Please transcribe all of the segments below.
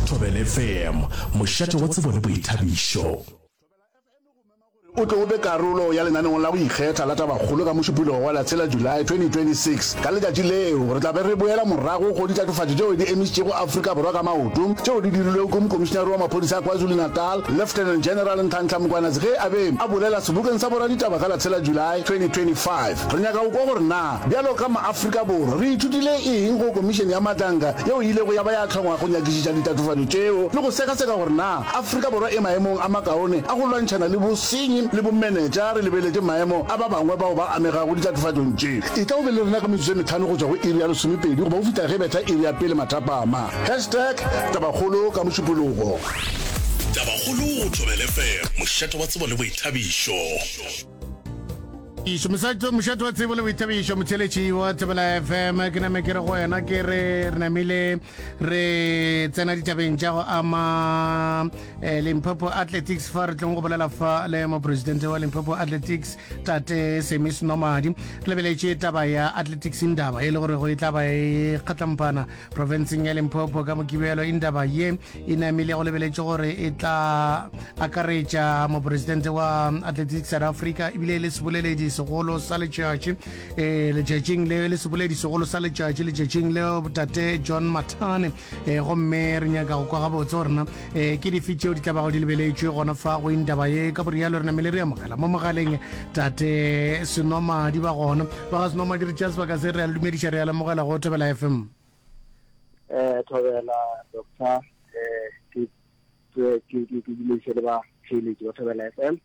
Thobela FM, mošate wa tsebo le boithabišo. O tlo be karolo ya lenaneong la go ikgetha la tabakgolo ka Mošupologo wa la tshela July 2026. Ka letšatši leo, re tla be re boela morago go ditatofatšo tšeo di emišitšego Afrika Borwa ka maoto tšeo di dirilwego ke Mokomišinare wa Maphodisa a KwaZulu-Natal, Lieutenant General Nhlanhla Mkwanatsi ge a be a bolela sebokeng sa boraditaba ka la tshela July 2025. Re nyaka go kwa gore na Bjalo ka maAfrika Borwa, re ithutile eng go Komišene ya Matlanka yeo e ilego ya ba ya hlongwa go nyakišiša ditatofatšo tšeo le go sekaseka gore na Afrika Borwa e maemong a makaone a go lwantšhana le bosenyi le bomenetša re lebeletše maemo a ba bangwe bao ba amegago ditatofatšong tše? Etla o be le rena ka metsotso e metlhano go tšwa go iri ya lesomepedi goba go fihla ge e betha iri ya pele mathapama. Hashtag Tabakgolo ka Mošupologo. Tabakgolo go Thobelefm, mošate wa tsebo le boithabišo. išo mošate wa tsebo le boithabišo motheletši wa thobela fm ke name ke re go wena ke re re namile re tsena ditabeng tša go ama eh, limpopo athletics fa re tlong go bolela fa le mopresidente wa limpopo athletics tate semis nomadi re lebeletše taba ya athletics ndaba e le gore go e tla ba e kgatlampana profenseng ya limpopo ka mokibelo indaba ye e namile go lebeletše gore e tla akaretša moporesidente wa atletic south africa ebile e le seboleledi segolo sa letšatši e letšatšing le le seboledi segolo sa letšatši letšatšing le botate john matane e gomme re nyaka go kwa gabotse gorena e ke dife tšeo di tlabago di lebeletšwe gona fa go indaba ye ka borialo re namele re amogela mo mogaleng tate senomadi ba gona ba ga senomadi re tšea sebaka se re a le dumediša re a lemogela go thobela fm um eh, thobela doctor um ke dumediše le ba theeletši ba thobela fm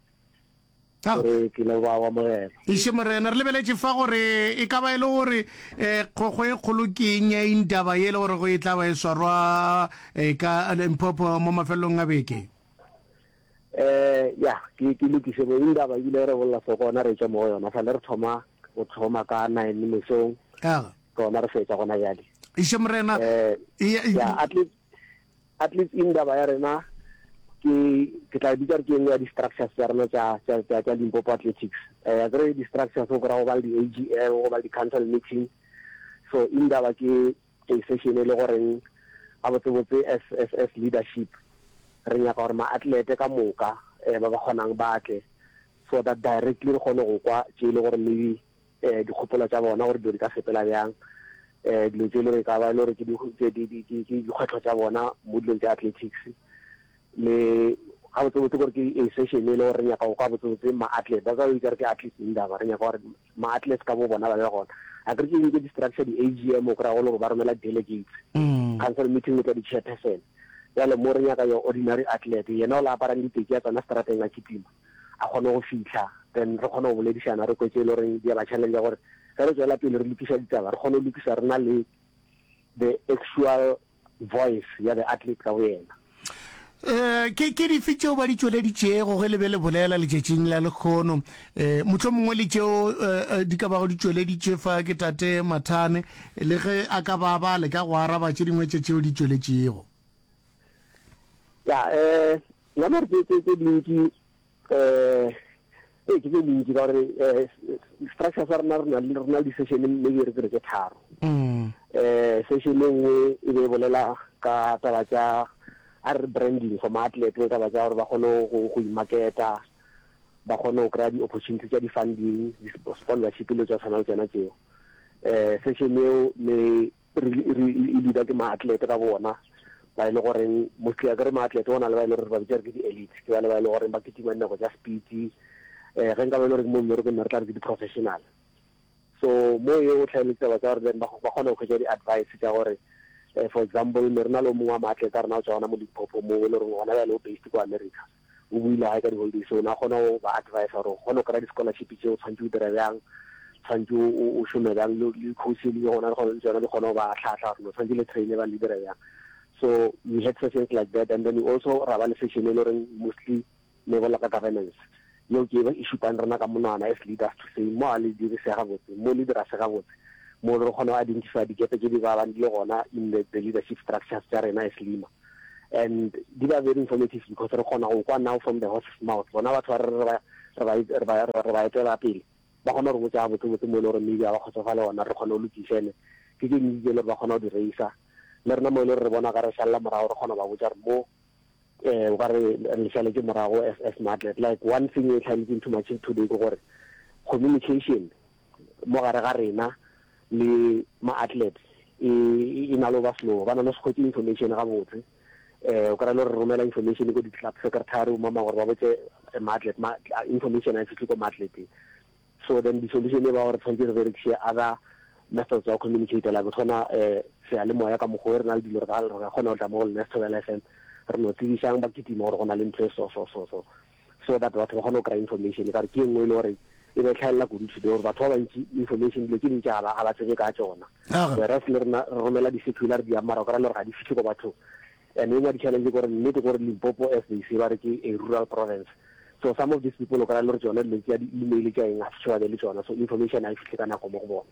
Re tlile go ba wa Morena. Eiše Morena, re lebeletše fa gore e ka ba e le gore kgokgo e kgolo ke eng ya eng taba ye le gore go e tla ba e swarwa ka Limpopo mo mafelelong a beke. Ya, ke ke lokiše mo eng taba ebile re bolela se gona re tšwa mo go yona sale re thoma go thoma ka nine mesong gona re fetsa gona bjale. Eiše Morena. Ya, at least. at least in daba ya rena ke ke tla bitsa re ke engwe ya di structures tsa rena tsa tsa tsa tsa Limpopo Athletics eh ya re di structures go ra go ba le di AGM go ba le di council meeting so in daba ke a session e le go reng a botse botse as as as leadership re nyaka gore ma athlete ka moka eh ba ba kgonang ba tle so that directly re kgone go kwa tše e le gore maybe um dikgopolo tša bona gore dilo di ka sepela bjang um dilo tse e le gore e ka ba e le gore ke dikgwetlho tša bona mo dilong tša athletics le ga botsebotse gore ke a session e le gore re nyaka go kwa botsebotse ma-athlete ba ka o ikare ke athlete indaba re nyaka gore ma-athlete ka bo bona ba be gona a kere ke eng ke di-structure di-a g m o kry-a go le gore ba romela delegates mm. council meeting le tla di-chairperson jale mo re nyaka yo ordinary athlete yena o la aparang diteki ya tsona strateng a kitima a kgone go fihla then re kgone go boledišana re kwetse e le goreng di a ba challenge gore ge re tswela pele re lokiša ditaba re kgone go lokiša re na le the actual voice ya the athlete ka boyena Eh, ke ke dife tšeo ba di tšweleditšego ge le be le bolela letšatšing la lekgono um eh, motlho mongwe le tšeo eh, eh, di ka bago di tšweleditše fa ke tate mathane le ge a ka ba ba le ka go araba tše dingwe tše tšeo di tšweletšego ya um Ya mare tse tse tse dintsi eh ee ke tse dintsi ka gore eh structure sa rena rena le rena di session maybe re tsere ke tharo mm. eh session e nngwe e be e bolela ka taba tsa a re branding for maatlete le taba tsa gore ba kgone go go imaketa ba kgone go kry-a di-opportunity tsa di-funding di-sponsorship le tsa tshwana le tsena tseo eh session eo le e dira ke maatlete ka bona ba e le goreng mostly a kere maatlete go na le ba e le gore ba bitsa re ke di-elite ke ba le ba e le goreng ba ketima dinako tša speedy um eh, ge nka ba e le gore mo mmerekong ne re tla re ke di-professional so mo ye o tlhaeletse taba tsa gore then ba kgona go kgwetsa di-advice tša gore um for example ne re na le o mongwe wa maatlete a rena o tswa gona mo limpopo mo e le goreng gona ba le o based ko america o boile gae ka di-holidays o ne a kgona go ba advisa gore o kgona go kry-a di-scholarship tse o tshwanetse o dira bjang tshwanetse o šome bjang le di-course e leng gona le tsona di kgona go ba tlhatlha gore lo tshwanetse le traine ba le dira bjang so we had sessions like that and then we also ra ba le session e le goreng mostly ne bola ka governance yeo ke e šupang rena ka monwana as leaders to say mo a le dirise gabotse mo le dira se gabotse mo re kgona go identify dikepe tse di ba bang di le gona in the, the leadership structures tsa rena as lima and di ba very informative because re kgona go kwa now from the horse's mouth bona batho ba re ba etela pele ba kgona gore botsa botse botse mo e le gore maybe ga ba kgotsofa le ona re kgona go lokisene ke ke ntsi le gore ba kgona go di raisa le rena mo e le gore re bona ka re šalela morago re kgona go ba botsa gore mo um ba re re šaletse morago as as matlet like one thing e tlhaletseng too much today ke gore communication mo gare ga rena le ma athletes e e na le ba slow ba na le sekgwetse information ga botse eh o kra lo re romela information go di club secretary o mama gore ba botse eh, ma athlete ma information a fihle go ma athlete so then the solution e ba gore tshwanetse re berekise other methods tsa go communicate like tshwana eh se a le moya ka mogo re na le dilo re ka re kgona go tla mo go lena se thobela fm re no tsebisang ba kitima gore go na le ntho e so so so so so that batho ba kgone go kry information ka gore ke e nngwe e le gore e be tlhaelela kudu today gore batho ba bantši information dilo tse dintši ga ba ga ba tsebe ka tsona whereas le rena re romela di-circular di yang mara o kry le gore ga di fitlhe ko bathong and e nngwe ya di-challenge gore nnete gore limpopo as they say ba re ke a rural province so some of these people o kry le gore tsone dilo tsa di-email tsa eng ga fitlhe ba be le tsona so information ga e fitlhe ka nako mo go bone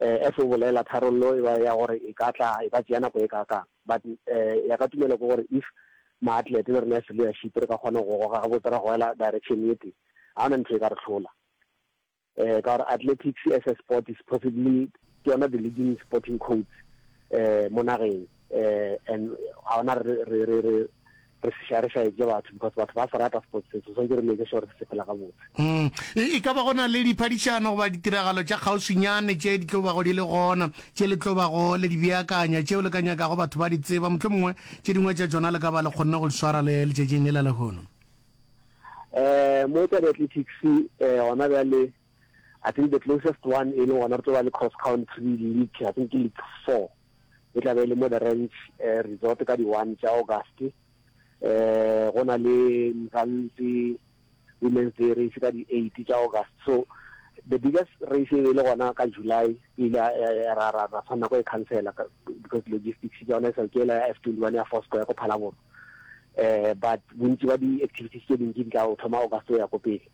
As o bolela, tharollo e ba ya gore e ka tla, e ka tšea nako e kaakang. But ya ka tumelo ke gore if ma-athlete le rena as leadership re ka kgona go goga gabotse ra goela direction ye tee, ga go na ntho e ka re hlola. Ka gore athletics as a sport is possibly ke yona the leading sporting codes mo nageng and ga go na re, re, re, re, re se šare šaetše batho because batho ba se rata sports se, so swantše re make sure se sepela gabotse. Umm e, e ka ba go na le diphadišano goba ditiragalo tša kgauswinyane tše di tlo bago di le gona, tše le tlo bago le di beakanya, tšeo le ka nyakago batho ba di tseba, mohlomongwe tše dingwe tša tšona le ka ba le kgonne go di swara le letšatšing le la lehono? Eh, mo tša di-athletics eh, gona bjale, I think the closest one e le gona re tlo ba le cross country league, I think ke league four e tla be e le mo the ranch eh, resort ka di one tša August eh go na le Mzansi women's day race ka di eight tša August so the biggest race e le gona ka July ile ra ra ra tshwanela go e cancela because logistics ya yona e sa ke la F twenty one ya Fosco ya go Phalaboro eh but bontsi ba di activities tse dintsi di tla o thoma August ya go pele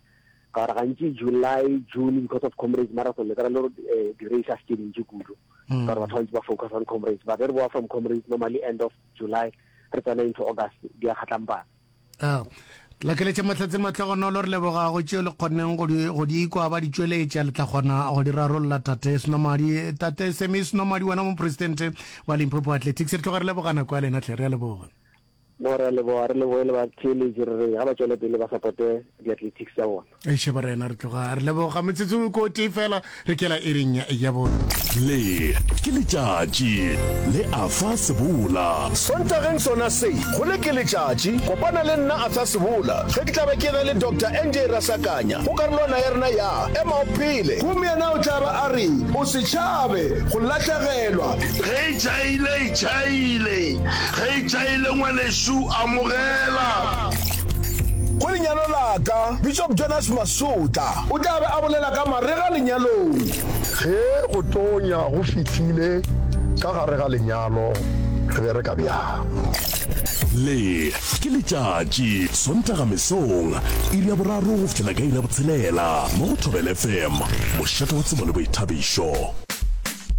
Ka gore gantši July, June because of Comrades Marathon le kry-a le gore eh, di-race a se tše dintši kudu. Ka gore batho bantši ba focus on Comrades. But re boa from Comrades normally end of July re tsena into August di a kgatlampana. Ah, lakeletša mahlatse matlhogonolo re lebogago tšeo le kgonneng go di- go di ikwa ba di tšweletša le tla kgona go di rarolla tate senomadi tate semi senomadi wena mopresidente wa limpopo athletics re tloga re lebogana kwa lena tlhe re a leboga No, re a leboga, re leboge le batheeletši, re re ge ba tšwele pele ba supporte di-athletics tša bona. Eiše barena re tloga re leboga, metsotso ke o tee fela re kela iring ya ya bo. Le ke letšatši le Arthur Sebola. Sontageng sona se, go Le ke letšatši, kopana le nna Arthur Sebola ge ke tla be ke na le Doctor NJ Rasakanya go karolwana ya rena ya Ema o Phele. Gomme yena o tla ba a re, O se tšhabe go lahlegelwa. Ge e tšhaile, e tšhaile. Ge e tšaile ngwanešu amogela. Go lenyalo la ka, Bishop Jonas Masotla o tla be a bolela ka marega lenyalong. Ge go tonya go fihlile ka gare ga lenyalo, re bereka bjang? Le, Ke letšatši, Sontaga mesong, iri ya boraro go fihlela ka iri ya botshelela mo go Thobela FM, mošate wa tsebo le boithabišo.